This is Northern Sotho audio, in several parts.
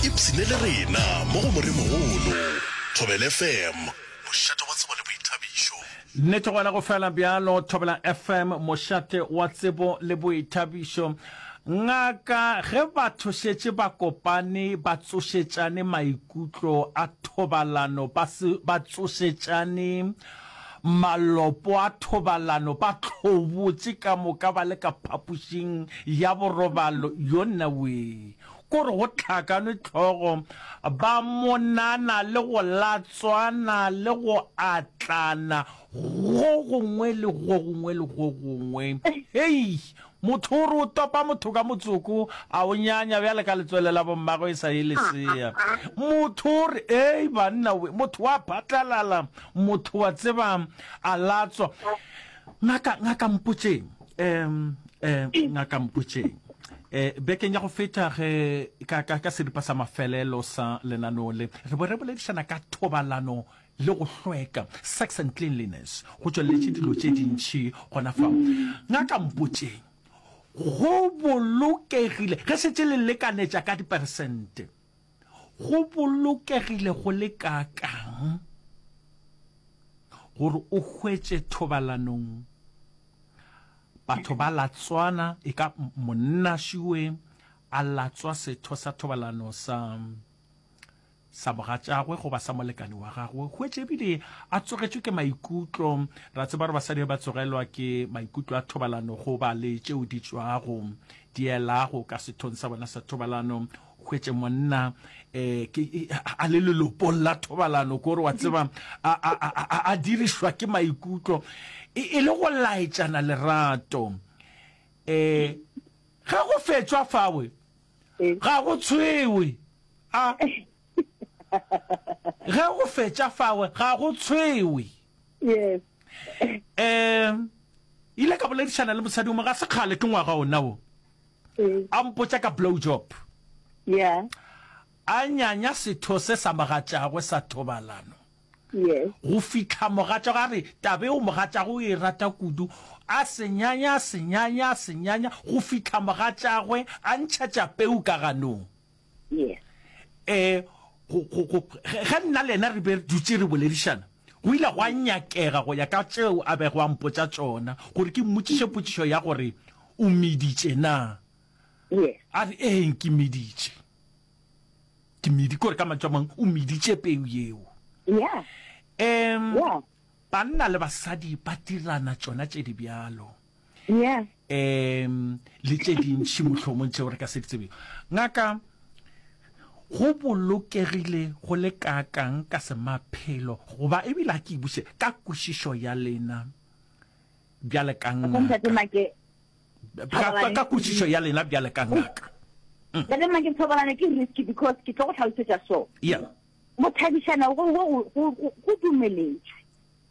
Ipshine le rena mo go Moremogolo. Thobela FM, mošate wa tsebo le boithabišo. Nnete gona go fela bjalo, Thobela FM, mošate wa tsebo le boithabišo. Ngaka, ge batho šetše ba kopane ba tsošetšane maikutlo a thobalano, ba se ba tsošetšane malopo a thobalano, ba tlhobotše ka moka ba le ka phapošing ya borobalo, yonnawee, Ko re go hlakanwe tlhogo, ba monana le go latswana le go atlana go gongwe le go gongwe le go gongwe. Hei! Motho o re o topa motho ka motsoko, a o nyanya bjale ka letswele la bommagwe e sa ye lesea. Motho o re, Hei banna we! Motho wa phatlalala, motho wa tseba a latswa. Ngaka, ngaka mpotšeng. Um, um, ngaka mpotšeng. Eh, bekeng ya go feta ge ka, ka, ka seripa sa mafelelo sa lenaneo le re bo re boledišana ka thobalano le go hlweka sex and cleanliness go tšweleletše dilo tše dintšhi gona fa ngaka mpotšeng go bolokegile ge šetse le lekanetša ka diperesente Go bolokegile go le kaakang gore o hwetše thobalanong batho ba latswana, e ka monna šiwe a latswa setho sa thobalano sa sa mogatšagwe goba sa molekane wa gagwe, hwetše ebile a tsogetšwe ke maikutlo. Ra tseba gore basadi ba tsogelwa ke maikutlo a thobalano goba le tšeo di tšwago di elago ka sethong sa bona sa thobalano. hwetše monna um a le lelopong la thobalano kore wa tseba a dirišwa ke maikutlo e, e le go laetšana lerato um ga go fetšwa fawe ga go tshwewe a ge go fetša fawe ga go tshwewe yes um ile ka boledišana le mosadi o mo ga se kgale ke ngwaga ona o a mpotša ka blowjob, a nyanya setho se sa mo gatšago sa thobalano, go fihla mogatšwago a re taba eo mogatšago o e rata kudu, a se nyanya, a se nyanya, a se nyanya, go fihla mogatšagwe a ntšhetša peu ka ganong. yes eh go go go ge nna lena re be re dutse re boledišana go ile gwa nyakega go ya ka tšeo a bego a mpotsa tsona gore ke mmotšiše potšišo ya gore o meditše na yes a re eng ke meditše ke medi kore ka mantšu a mangwe o meditše peu yeo yeah um yeah banna le basadi ba dirana tšona tše di bjalo yeah um le tše dintšhi mohlomong tšeo re ka se di tsebego ngaka go bolokegile go le kaakang ka semaphelo goba ebile a ke ibuse ka kwešišo ya lena bjale ka ngaka kwešišo ya lena bjale ka ngaka mm. ntate make thobalane ke risky because ke tlo go tlhalosetša so yeah mothabišana go dumeletswe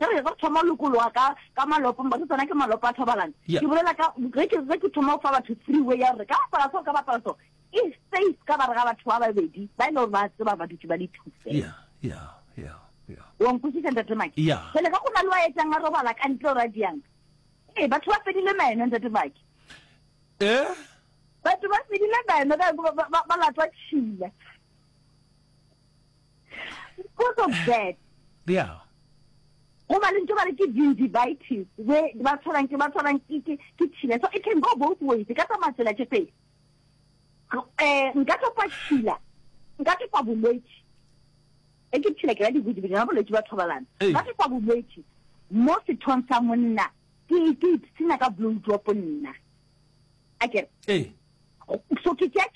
Ge re ezo thoma ho lokologa ka, ka malopo, mpa se tsona ke malopo a thobalano. Yeah. Ke bolela ka, ge ke, ge ke thoma go fa batho free way ya gore ka bapala so, ka bapala so, e safe ka gare ga batho ba babedi, ba e le gore ba tseba ba dutše ba le two fela. Yeah, yeah, yeah, yeah. Wa nkwešiša ntate Maki? Yeah. Pele ga go na le wa etsang a robala ka ntle o ra diang. Ee, batho ba fedile meno ntate Maki. Eh? Batho ba fedile meno ka ba, ba, ba, ba latwa tšhila. because of that yeah goba le ntse ba re ke gingivitis we ba tshwarang ke ba tshwarang ke tšhila so it can go both ways ka tsamaya tsela tše pedi um eh, nka topa tšhila nka topa bolwetse e ke tšhila ke la dibodibodi na bolwetse ba thobalana nka topa bolwetse mo sethong sa monna ke ipsena ka blow drop nna a kere so ke tšea